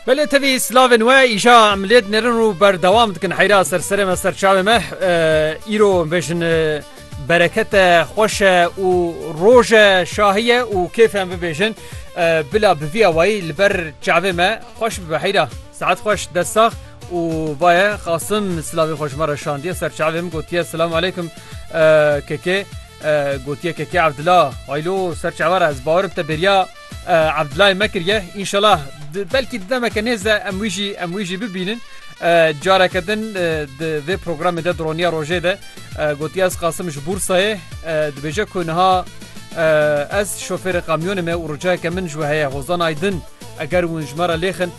Belê tevî slavên we îja em lê dinêrin û berdewam dikin heyra ser serê me ser çavê me îro bêjin berekete xweşe û roje şahiye û kêfem bibêjin bila bi vî awayî li ber çavê me xweş bibe heyra saet xweş dessax û vaye xasim silavê xweş me re şandiye ser çavê min gotiye silam aleykum kekê gotiye kekê evdila aylo ser çavara ez bawerim te bêriya Abdulay me kiriye înşelah belkî di demeke nêze em wî jî em wî jî bibînin. Careke din di vê programê de dironiya rojê de gotiye ez qasim ji Bûrsayê dibêje ku niha ez şofêrê qamyonê me û ricayeke min ji we heye Hozan Aydin eger hûn ji me re lêxin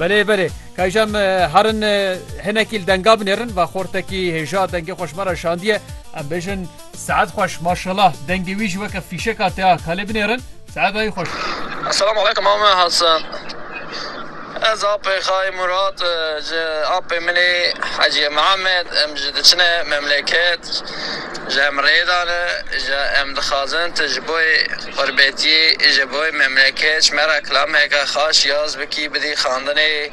Belê belê kayja me herin hinekî li denga binêrin va xortekî hêja dengê xweş me re şandiye em bêjin saet xweş maşallah dengê wî jî weke fîşeka te ya kalê binêrin saedayî xweş Assalamu aleykum Ame Hasan Ez apê xay Murat ji apê min ê Heciye Mihemed em ji diçine memleket ji em rêdane ji em dixwazin tu ji bo Xurbetî ji bo memleket ji me re kilameke xaş yaz bikî bidî xandinê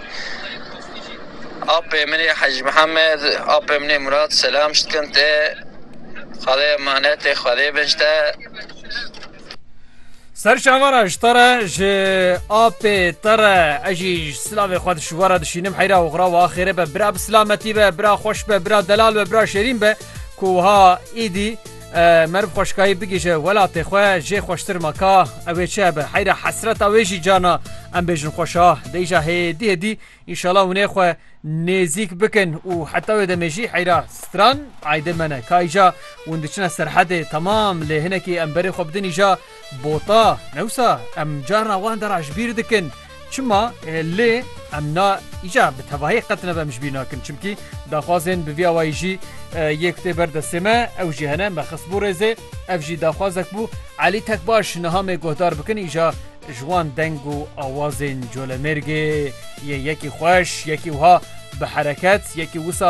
Apê min ê Hecî Mihemed, Apê min ê Murat selam ji dikin te, Xwedê emanetê Xwedê bin ji te. Ser çava re ji te re, ji Apê te re ez jî silavê xwe ji we re dişînim heyra oxira wiha xêrê be bira bi silametî be, bira xweş be, bira delal be, bira şêrîn be ku wiha îdî Meriv xweşkayî bigihîje welatê xwe jê xweştir ma ka ew ê çi be heyra hesreta wê jî cana em bêjin xweşa deyja hêdî hêdî înşala hûnê xwe nêzîk bikin û heta wê demê jî heyra stran aydê me ne kayîja hûn diçine serhedê temam lê hinekî em berê xwe bidin îja Bota, Newsa em carna wan dera ji bîr dikin. Çima? Lê em na îcar bi tevahî qet nebe em ji bîr nakin. Çimkî daxwazên bi vî awayî jî yê ku tê ber destê me ew jî hene. Me xistbû rêzê. Ev jî daxwazek bû Elî Tekbaş niha me guhdar bikin îcar ji wan deng û awazên Colemêrgê yê yekî xweş, yekî wiha bi hereket, yekî wisa